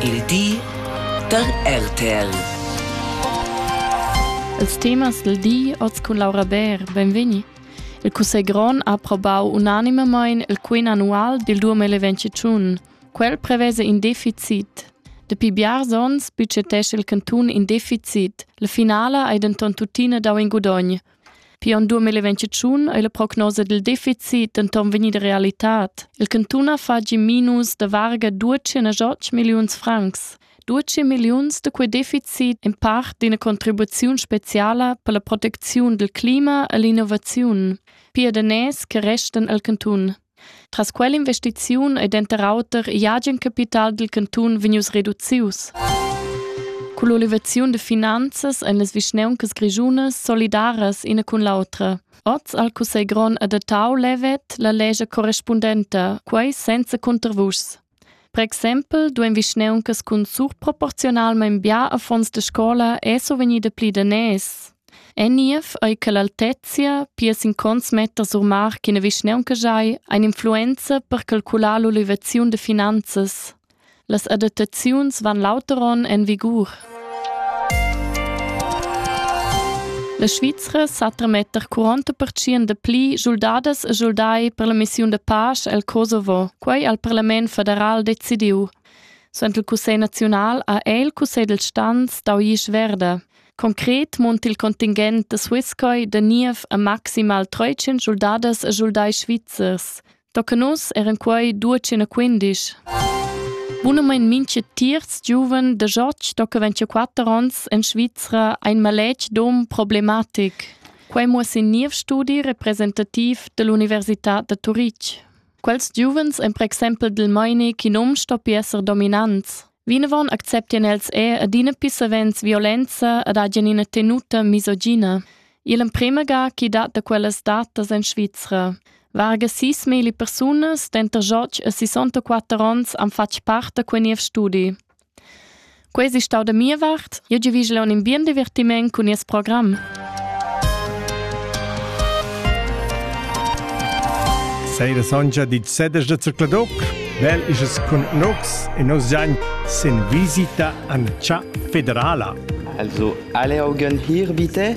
Il di da RTL. Els temas il di oz cun Laura Bär, benvegni. Il Cussegl grond ha aprobau unanimamein il quin annual dil 2021. Quel prevese in deficit. Dapi biars onns budgetesce il cantun in deficit. La finala ei denton tuttina dau in gudogn. Pia en 2021 ei la prognosa dil deficit denton vegnida realitad. Il cantun ha fatg in minus da varga 208 milliuns francs. 12 milliuns da quei deficit in part d'ina contribuziun speciala per la proteziun dil clima e l'innovaziun. Pia daners che restan al cantun. Tras quell'investiziun ei denter auter igl agen capital dil cantun vegnius reducius. Culla olivaziun de finanzas ein las vischneuncas grischunas solidaras ina cun l'autra. Oz al Cussegron adattau levet la lescha correspundenta, quei senza cuntervuschs. Per exempel duein vischneuncas cun surproporziunalmein bia affons da scola esser vegnida pli daners. En niev ei che l'altezia pia sin cons metter sur mar ch'ina vischneunca giai ein influenza per calcular l'olivaziun da finanzas. Las adattaziuns van lauter onn en vigur. La Svizra sa tremetter 40% de pli schuldadas e schuldai per la missiun de pace el Kosovo. Quei ha il parlament federal decidiu. Sent il cussegl naziunal ha el il cussegl del stanz dau isch verda. Concret munt il contingent de Swisscoy de niev a maximal 300 soldadas e soldai svizzers. Tocca nus eran quei 215. Bunamein minche tiers giuven de Joch tocca 24 ons in Svizzera ein maletg dom problematic. Quei muoss in niev studi representativ dell'Università de Turitg. Quels giuvens ein per exempel dil meini ch'in um stoppi esser dominants. Vinavon acceptien els er adina più savens violenza ed hagen ina tenuta misogina. Il emprema ga chi dat da quellas datas en Svizra. Varga sis mili persunas denter joc e 64 onns han fatg part da quei niev studi. Quei ei stau da mia vart. Jeu giuvischel aunc in bien divertiment cun nies program. Seira sonja di sedes da Zercladoc, bel is es cun nox e nos zain sin visita an cha federala. Also alle Augen hier bitte.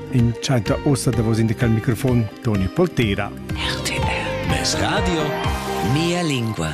In tschenta ossa davos in cal microfon Toni Poltera. RTL. Radio. Mia lingua.